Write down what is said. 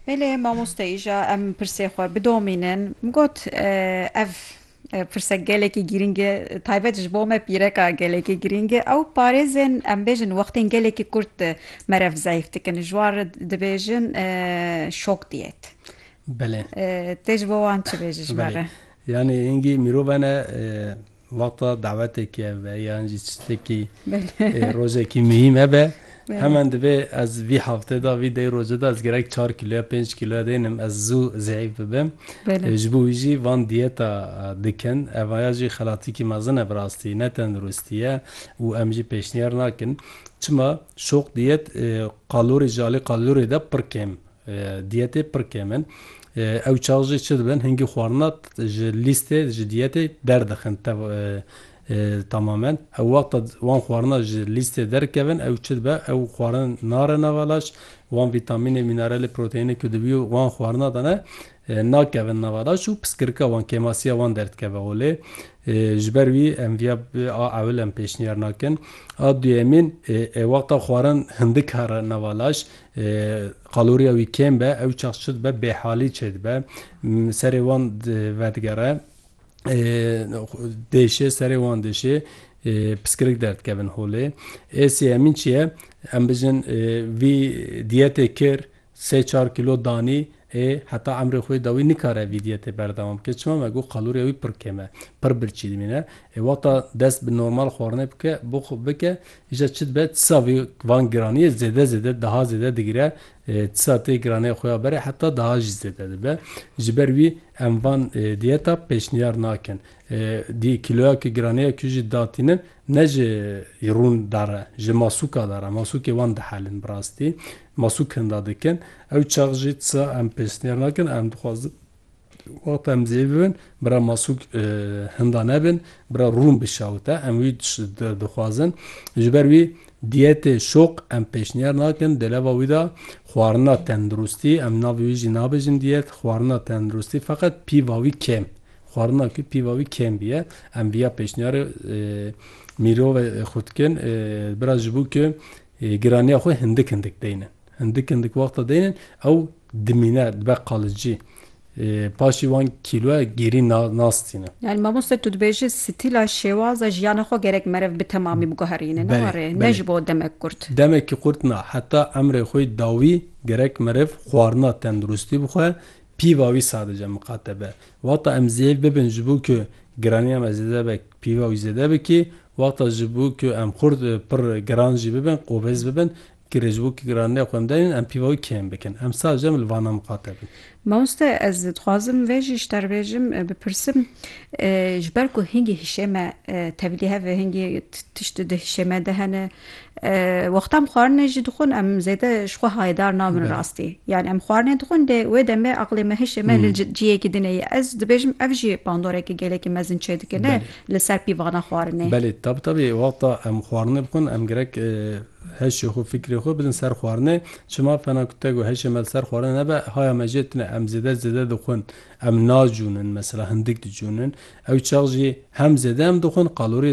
Belê mamoste îja em pirsê xwe bidomînin. Min got ev pirsek gelekî girîng e taybet ji bo me pîreka gelekî girîng e ew parêzên em bêjin wextên gelekî kurt merev zayîf dikin ji wan re dibêjin şok diyet. Belê. Tê ji bo wan çi bêjî ji me re? Yanî hingî mirov hene Wexta dawetekê hebe yan jî çitekî rojekî muhîm hebe hemen divê ez vî hefte de vî dey roje de ez gerek çar kîlo ya pênc kîlo ya dênim ez zû zî'îf bibim. Ji bo wî jî van diyeta dikin. Eva ya jî xelatikî mezin e bi rastî ne tenduristî ye û em jî pêşniyar nakin. Çima şoq diyet kalorî ji alî kalorî de pir kêm Diyetê pir kêm in. Ew çax jî çi dibin hingî xwarina ji lîstê ji diyetê derdixin temamen. Ew wexta wan xwarina ji lîstê derkevin ew çi dibe ew xwarin nare nava laş wan vîtamînê, mîneralê, proteyînê ku dibî wan xwarina de ne nakevin nava laş û piskirika wan kêmasiya wan derdikeve holê. Ji ber wî em viya a ewil em pêşniyar nakin. A duyemîn ê wexta xwarin hindik here nava laş Qaloriya wî kêm be, ew çax çi dibe bêhalî çêdibe. Serê wan vedigere dêşê, serê wan dêşê piskirik derdikevin holê. Ê sêyemîn çi ye? Em bijin vî diyetê kir, sê çar kîlo danî, Ê heta emrê xwê dawî nikare vîdye tê berdewam bike çima me got qalûrê wî pir kêm e, pir birçî dimîne. Ê wexta dest bi normal xwarinê bike bo xwe bike îja çi dibe tisa vî van giraniyê zêde zêde daha zêde digire tisa tê giraniyê xwe ya berê heta daha jî zêde dibe ji ber wî em van diyeta pêşniyar nakin dî kîloya ku giraniya ku jî datînin Ne ji rûn dar e, ji masûka dar e. Masûkê wan dihelin bi rastî. Masûk hinda dikin. Ew çax jî tisa em pêşniyar nakin. Em dixwazin wexta em zêv bibin bira masûk hinda nebin, bira rûn bişawite. Em wî dixwazin. Ji ber wî diyetê şoq em pêşniyar nakin. Di leva wî de xwarina tenduristî, em navê wî jî nabêjin diyet, xwarina tenduristî feqet pîva wî kêm. Xwarinan ku pîva wî kêm bûye, em vîya pêşniyarê Mîro ve xwe dikin, bira ji bo ku giraniya xwe hindik hindik deynin. Hindik hindik wexta deynin, ew dimîne, dibe qalicî. Paşê wan kîloya gêrî nas tînin. Yanî mamoste tu dibêjî stîla şêwaza jiyana xwe gerek meriv bi temamî biguherîne, ne wa rê, ne ji bo demek kurt. Demekî kurt na, heta emrê xwe dawî gerek meriv xwarina tenduristî bixwe, Pîva wî sadice miqate be. Wexta em zêyek bibin ji bo ku giraniya me zêde be pîva wî zêde bikê, wexta ji bo ku em xurt pir giran jî bibin, qobêz bibin, girê ji bo ku giraniya xwe em derînin em pîva wî kêm bikin. Em sadece em li vana miqate bin. Mamoste ez dixwazim vê jî ji te re bêjim, bipirsim, ji ber ku hingî hişê me tevlî hev e, hingî tişt di hişê me de hene, Wextan xwarinê jî dixwin em zêde ji xwe hayedar nabin rastî. Yanî em xwarinê dixwin dê wê demê aqilê me hişê me li ciyekî din e. Ez dibêjim ev jî bandorekî gelekî mezin çêdikine li ser pîvana xwarinê. Belê tabi tabi wexta em xwarinê dixwin em girek heşê xwe fikrê xwe bidin ser xwarinê. Çima fena ku te got heşê me li ser xwarinê nebe haya me jê tune em zêde zêde dixwin. Em nacûnin mesela hindik dicûnin. Ew çax jî hem zêde em dixwin kalorî